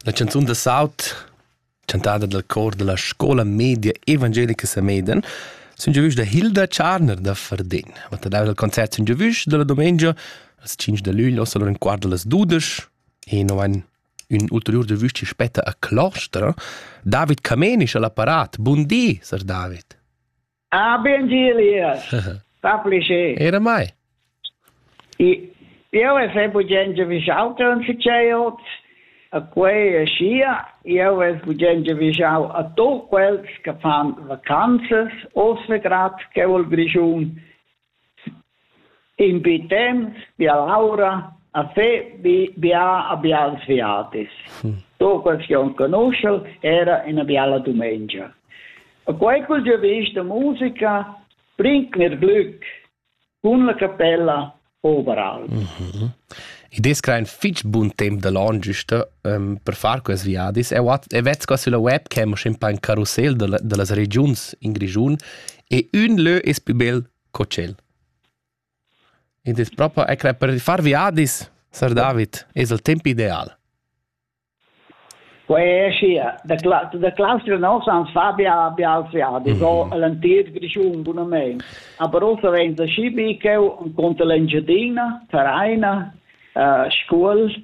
La canzun da saut chantada dal cor dalla scola media evangelica Sameden sun giovüs da Hilda Tscharner da Fardin. Vatta dau dal concert sun giovüs dalla domengia als 5 da luglio solo un quart das 12 e no ein un ulterior giovüs ci spetta a clostra David Camenisch all'apparat. Buondì, sar David. Ah, ben di, Elias. Fa plascher. Era mai. Io è sempre gente visauta un ficeiot, a quei e sia, io è gente visau a tu quels che fan vacanzas, o svegrat, che vol grigiun, In bi temps bia laura a fe bi bia a bials viatis. Tu questiun conoschel era ina biala dumengia. A quei col giavisch da musica bringt mir glück cun la capella overall. Mm I des crain fitg bun temp da l'on giusta um, per far quest viadis. E vet sco sulla webcam o scimpa in carrousel da, da las regiuns in Grischun E ün lö es plü bel co tschel. Ed es propa ecla per far viadis, sar David, es il temp ideal. Quei è schi, da, da claustra nossa ans fa bia, bia als viadis, mm -hmm. o l'entir Grischun bunament. Aber also, wenn da schi biccheu, un conta l'Engiadina, Vereina, uh, Scuol,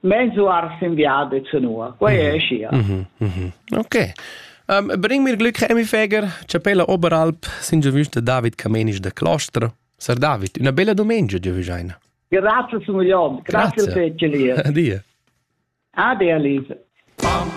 Mensuar sin viadets nua, quei è scia. Okay. Um, Bring mir Glück, Emi Feger, Chapella Oberalp, sin giovüs de David Camenisch de Clostra. Sir David, una bella domenica, giovüs eine. Grazie, Signor Leon. Grazie, Grazie. fece Lia. Addio. Addio, Lisa. Pam.